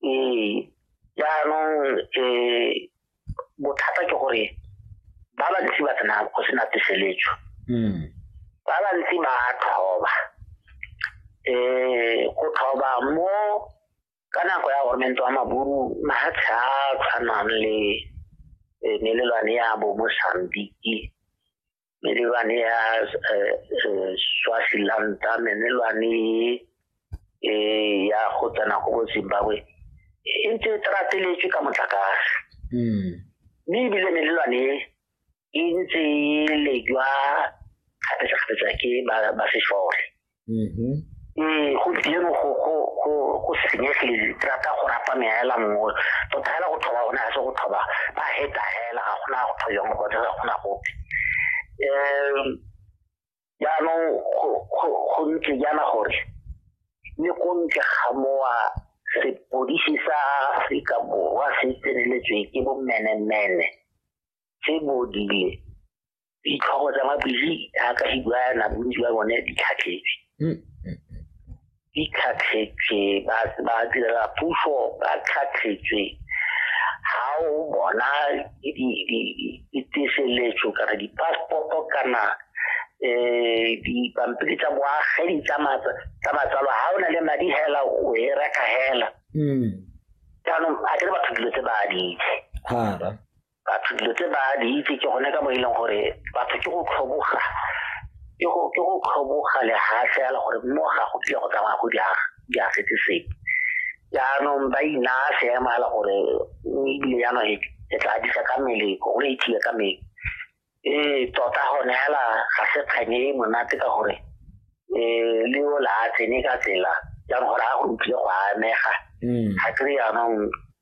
ee jaanong um bothata ke gore ba bantsi ba tsena go sena puseletso hmm. ba bantsi ba thoba um go thoba mo ka nako ya gormente wa maburu mafatshe a tshwanang le eh, melelwane ya bo mosambiki melelwane ya eh, eh, swazilanta melelwane eh, ya go tsena go bo zimbabwe e ntse e trateletswe ka motlakase hmm. mme ebile melelwane e ntse e lejwa kgapetsa-kgapetsa ke ba sešole mm-hmm. ee go dieno go go go go senyegile tsaka go rapa meela mmoe to thela go thoba ona se go thoba ba heta hela ga gona go thoya mo go dira gona go eh ya no go go go ntse ya na gore le go ntse ga moa se polisi sa Afrika Borwa se tseneletswe ke bo mene mene se bodile ditlhogo tsa mabili jaaka di buana bontsi ba bone di tlhatlhetse hmm. di tlhatlhetse ba direla puso ba tlhatlhetse ga o bona diteseletso kana di-passporto kana um dipampiri tsa boagedi tsa matsalo ga o na le madi hela o e reka hela hmm. jaanong a kere batho dilo tse ba di itse batho dilo tse ba di itse ke gone ka mo e leng gore batho ke go tlhoboga ke go ke go tlhoboga lehatlhe ya le gore mo ga go tlile go tsamaya go diaga di a setse sepe jaanong ba inaya seemo ya le gore ebile jaanong e, e tla disa ka mmele go le ithiye ka mmele ee tota gone fela ga se kganye e monate ka gore um le o la a tsene ka tsela jaanong gore a go utlwile go amega mm. ga kry jaanong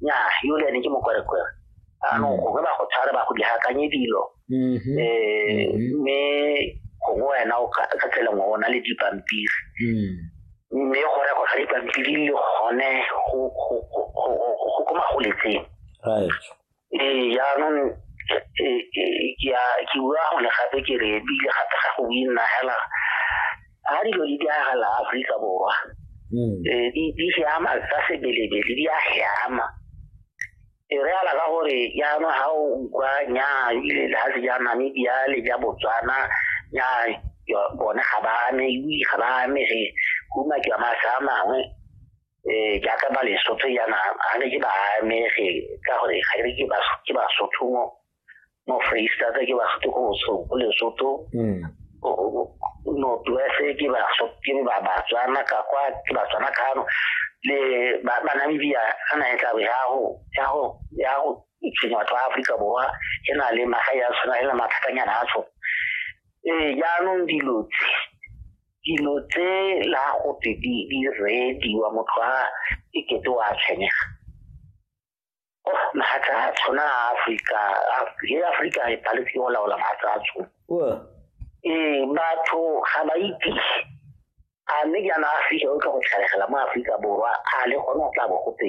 nya yole ne ke mokwerekwere anong mm. gongwe ba go tshware ba go diakanye dilo um mme gongwe wena o ka tsela ngwe o na le dipampiri mm. mme go rego ga dipampiri le gone go ko magoletseng ee jaanong e, e, ke bua gone gape ke re ebile gape ga go nna fela ga dilo di diragala aforika borwa mm. e, di siama tsa sebelebele di a siama e re ala ka gore jaanong ga o utlwa nya ile le ga se ja namibia le ja botswana nya bone ga ba ame ga ba amege kuma ke wa masa a mangwe eh jaaka ba lesotho yana ga ne ke ba amege ka gore ga ne ke ke basotho mo mo freestata ke basotho go so go lesotho hmm. northwest ke basotho ke ba batswana ka kwa ke batswana kano le ba namibia ga na e tla ya go ya go ya go itshwenya batho ba aforika borwa e na le magae ya tshwana e le mathatanyana a tshwana ee jaanong dilo tse dilo tse la go tse di di rediwa motho a e kete wa tshwenyega oh mahatla a tshwana a Afrika e Afrika e paletse go laola mahatla a tshwana ee batho ga ba itse a mme jaana Afrika o tla go tlhalegela mo Afrika Borwa a le gone o tla bo gotse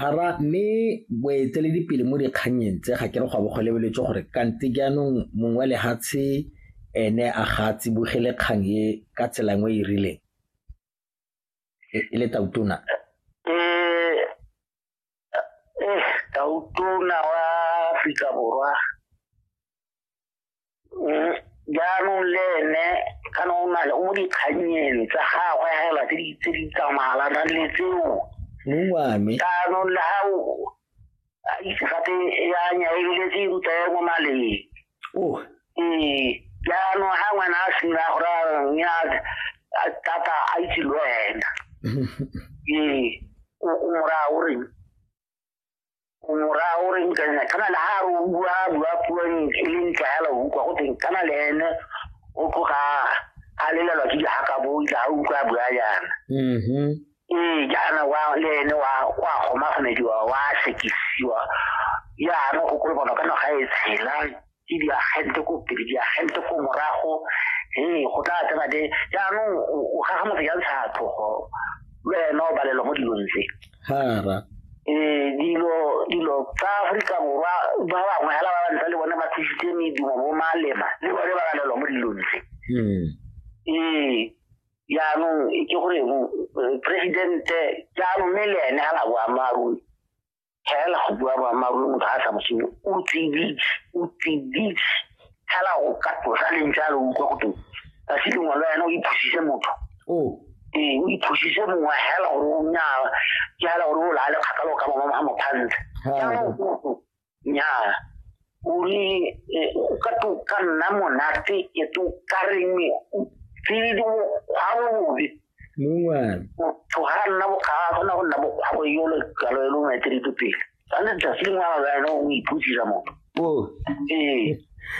Hara mme boeteledipele mo dikgannyeng tse ga ke re go a bo go lebeletswe gore kante jaanong mong wa lehatshe ene a ga a tsibogele kgang e ka tsela nngwe e rileng e le tautona. Tautona wa Aforika Borwa jaanong le ene kana o na le o mo dikganyeng tsa gagwe fela tse di tse di tsamayalana le tseo mongwame jaanong le ga o a itse gape ya nya ebile tse ruta ya mo maleng oh ee jaanong ga ngwana a sena gore nya tata a itse le wena ee o mo raya o reng morao re utlwa ena kana le ha o bua bua puo e leng tlwaela o utlwa go teng kana le ene o tloga a lelelwa ke dihaka bo tla o utlwa bua yana mm-hmm. ee jaana wa le ene wa wa gomagomediwa wa sekisiwa jaana go kolobana ka naga e tshelang ke diagente ko pele diagente ko morago ee go tla tsena de jaanong o gaga motho ya ntsha tlhogo le wena o balelwa mo dilong tse ee dilo dilo tsa aforika borwa ba bangwe fela ba bantsa le bone ba thusitse medumo bo malema le bone ba balelwa mo dilong tse hmm. ee jaanong ke gore presidente jaanong mme le ene ga la boammaaruri tlhaela go bua boammaaruri motho ga a sa mosimo o tsiditse o tsiditse tlhaela go ka tlosa leng jalo utlwa go teng ka se lengwe le wena o iphusise motho oh. ee o iphusise mongwe hela gore o nyaa ke hela gore o laale kgakalo ka mama ga mothantle jaanong nyaa o re eh, o ka to ka nna monate e to ka reng tsididi mokgwa bobe mongwana motho ga a nna bokga a kgona go nna bokgwa go yolo kalo e lo ngwete ditopele tshwanetse tsatsi lengwe ga wena o iphusisa motho ee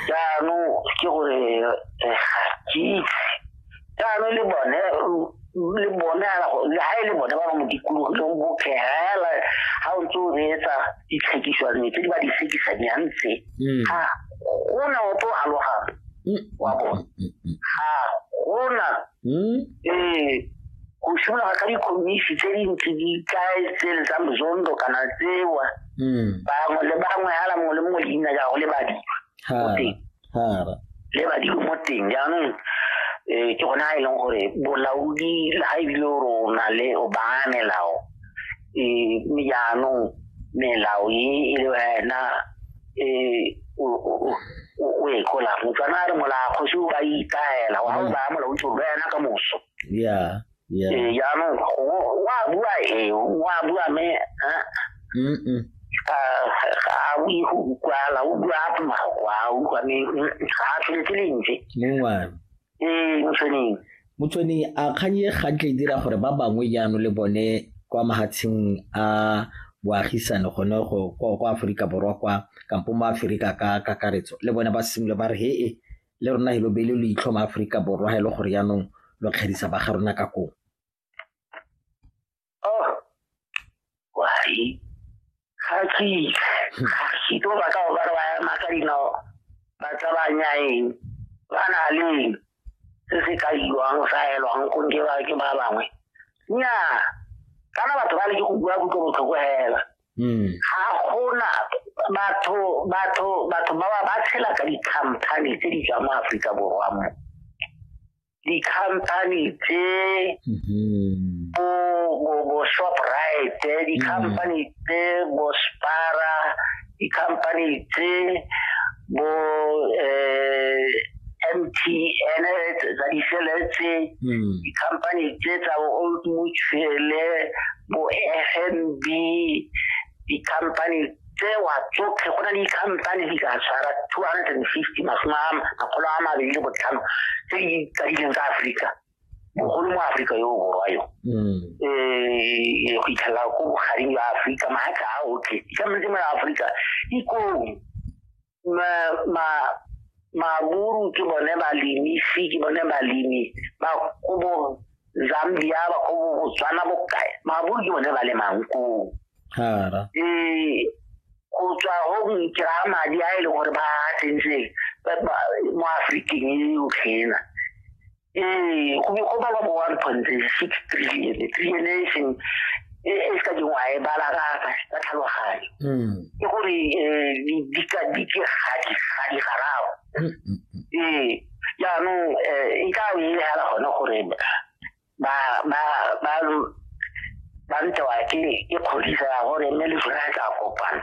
jaanong ke gore eh, ga ke itse jaanong le bone le bone le ha e le bone ba ba mo dikologileng botlhe hela ha o ntse o reetsa ditlhekiswane tse di ba di sekisanyang tse mm. ga gona o tlo alogang mm. wa bone ga gona mm. ee go simologa ka dikomisi tse dintsi di tlae tse le tsa mozondo kana tsewa bangwe le bangwe hala mongwe le mongwe leina jago le badima le badimo mo teng jaanong um ke gone a e leng gore bolaodi le ga ebile o re o na le o baya melao um mme jaanong melao e e le wena um o e kola motswana a re molaa kgosi o ba ikaela wa o baya molaodi gore wena ka moso ya Ee, jaanong o- o a bua ee o a bua me ah, Mm-mm. ga ga a bue go utlwala o bua a mafoko a utlwa me mm, ga a tlhole ke lentswe mongwane ee motshweneng motsone a kgang e gantle e dira gore ba bangwe jaanong le bone kwa mahatsheng a boagisane gone go kwa kwa aforika borwa kwa kampo mo aforika ka kakaretso le bone ba simole ba re he e le rona helo bele lo itlhoma Aforika Borwa ha e le gore yaanong lo kgerisa ba ga rona ka kong oh, ga ke ga ke tlo ba ka ba ba ema ka dinao ba tsabanya eng ba na le se se ka iwang sa elwang go nke ba ke ba bangwe nnyaa kana batho ba le ke go bua kutlo botlhoko hela hmm. ga gona batho batho batho ba ba tshela ka di-company tse di tswa mo aforika borwa mo di-company tse hmm. bo bo bo shoprite eh, di-company hmm. tse bo spara di-company tse bo um MTN tsa disele tse hmm. di-company tse tsa bo-old mutuele bo-f n b di-company tsewa tsotlhe go na le di-company di ka tshwara two hundred and fifty masome a makgolo a mabedi le botlhano tse di tsadileng tsa aforika bogolo mo aforika yo borwa yo um go itlhela ko bogareng jwa aforika maatla a otlhe dikametse mo ya aforika ikong maburu ke bone balemi fi ke bone balemi ba ko bo zambia ba ko bo botswana bokae maburu ke bone ba le mankoo um ee, go tswa go kry-a madi a e leng gore ba tsentseng mo aforikeng e yotlhena ee go be go bala bo one point six trillion trillion e seng e, e se ka dingwa e bala ka ka tlhaloganyo hmm. ke gore um dikegadi gadi garago hmm, hmm, ee jaanong um e ka nne fela gone gore ba ba ba ba ntewa ke kgodisa gore mme le sone tla kopana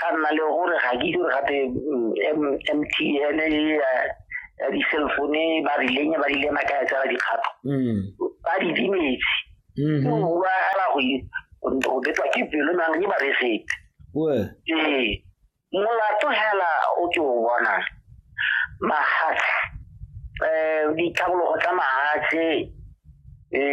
ga nna le gore ga ke dire gape mtn mm, ya di-cell phone ba rileng ba rile maka ya tsela dikgato mm. ba di dimetse mm-hmm. o bua fela go betwa ke pelo mang ke ba resete ee molato fela o ke o bona mahatshe um ditlhabologo tsa mahatshe